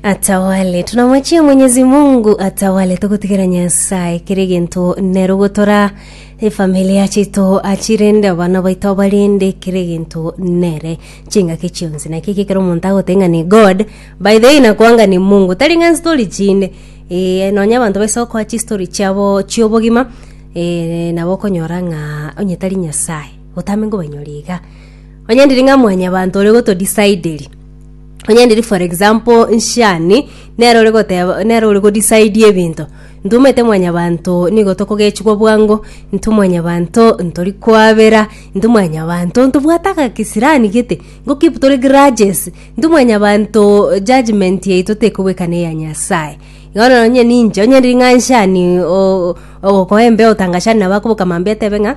atawale tunamwachia mwenyezi mungu atawale togotigera nyasaye kere gento nero gotora efamilia chito achirende abana baito abarende kere gento nere chingaki chionsi naki kekero omonto agotenga ni god by the way nakwanga ni mungu tari ng'a story chinde e, nonya abanto baise okoa chistori chiabo chiobogima e, nabo okonyora ng'a onye tari nyasaye otame ngobanyoria iga onye ndiri ng'a mwanyabanto ore gotodecideri Onye ndiri for example nshani, nere ore goteba, nere ore go decide ebinto. Intwe omanyete mwanyabanto nigo tokogechigwa bwango, intwe mwanyabanto ntori koabera, intwe mwanyabanto ntobwate agakesirani gete, nko keep tore grudges, intwe mwanyabanto judgement yaito tekobweka na eya Nyasaye. Bono nonye ninche, onye ndiri ng'a nshani oo ogokoa embeo otangachane nabo akoboka mambia atebe ng'a.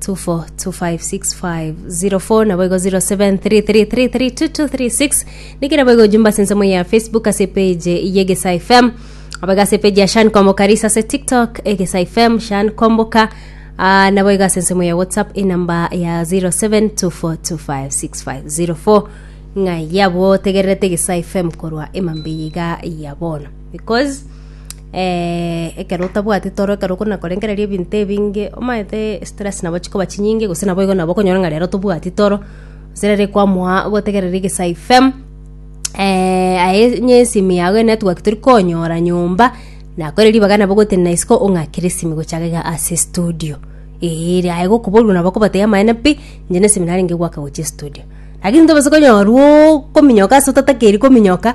24256504 naboigo 0733332236 nikira boigo jumba ase ensemo ya facebook ase page yegesa fm abaga ase page ya shan kwamboka risa ase tiktok egesa fm shan kwamboka uh, naboigo ase ensemo ya whatsapp enamba ya 0724256504 ng'a yabo tegererete egesa fm korwa emambeiga ya bono because ekero otabwati toro, ekero okona korengereria ebinto ebinge, omanyete stress nabo chikoba chinyinge, gose nabo igo nabo okonyora ng'a rero tobwati toro, gose rero ekoamoa gotegerera egesaha ifem, aye onye esimi yago enetwork tori konyora nyomba, nako ere ribaga nabo ogotenena isiko ong'akere esimi gocha iga iga ase estudio, eeh ere aye gokoboria nabo okobatebia amaene pi, inche na esimi narenge goaka gochia estudio. Lakini tobasa konyorwa ookominyoka ase otatakeri kominyoka.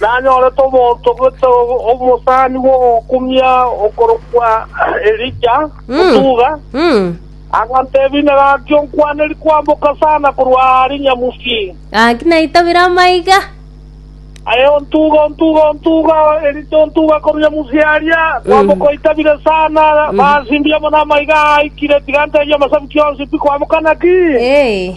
Nanyorete omonto gete omosani bw'ogokumia okorokwa Elija, otuga, agantebia, Inee, gaki onkwaneri kwamboka sana korwa aa rinyamusi? Gaki naitabire amaiga. Aye ontuga, ontuga, ontuga, Elija ontuga korwa rinyamusi aria, kwamboka oitabire sana, basimbia amo namaiga aa aikire, tiga ntebie amasabi kionsi, pi kwamboka naki? Ee.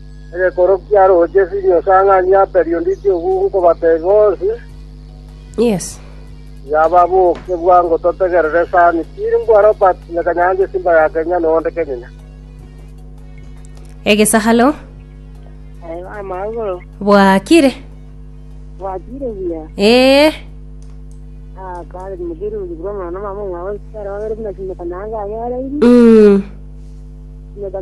Egekoro kia roche sinyo esang'ani ya periodontiti obwo nkobateebia bonsi, tiga baboke bwango totegerere esani. Tiri mbwa Robert na Kanyancha esimba ya Kenya na onde kenyene. Egesaharo Amagoro bwakire. bwakire buya. Ee. Ah, kare mugirungi bwa mwana mama mwa wesitara wabere buna simeka nanga ayoreiri. Mm. Simeka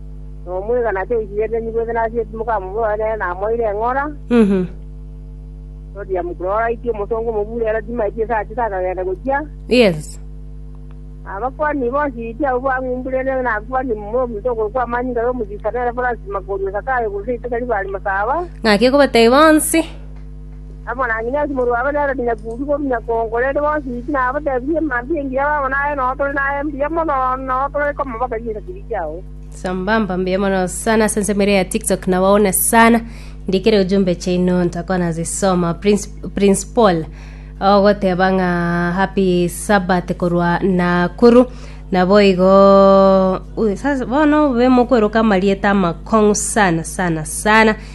nomwegana tairigereretie gose nasieti mokamobora nere namoeire eng'ora, Mhm. toria mokororaiti omosongo omobure ero timaeti ase achete akagenda gochia, Yes. abakuani bonsi iti abwo bang'umburene nakuani momura omonto okorokwa amanyinga y'omosibisa nere Francis Makorio Zakayo gose Itoke Ribari Masaba, Ng'aki okobatebia bonsi. Amanang'ina ase morwa abe nere nonya koru korwa nyakongo, rende bonsi inki nabatebirie mambia engiya babo naye nao tore naye mbuya mono nao tore komama bari ase chitibi chiao. Sambamba mbuya mono sana ase ensemo ere ya TikTok na waone sana ndikire ujumbe chaino ntakwana zisoma Prince, Prince Paul ogoteba ng'a happy Sabbath korwa Nakuru naboigo ui, sasa bono be mokweroka amarieta amakong'u sana sana sana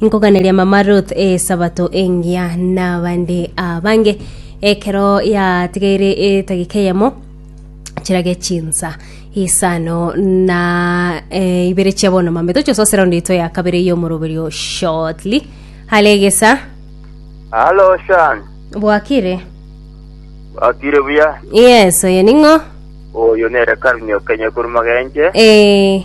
Nkoganeria mama Ruth Esabato engiya nabande abange ekero yatigaire etagika eyemo chirage chinsa isano na eh, ibere chia bono mame tochososera onde ito ya kabere y'omoroberio shortly halegesa Halo Shan, bwakire wakire buya? yes oyo ning'o Oyo nere Karunyo Kenya Kurumagenje. eh,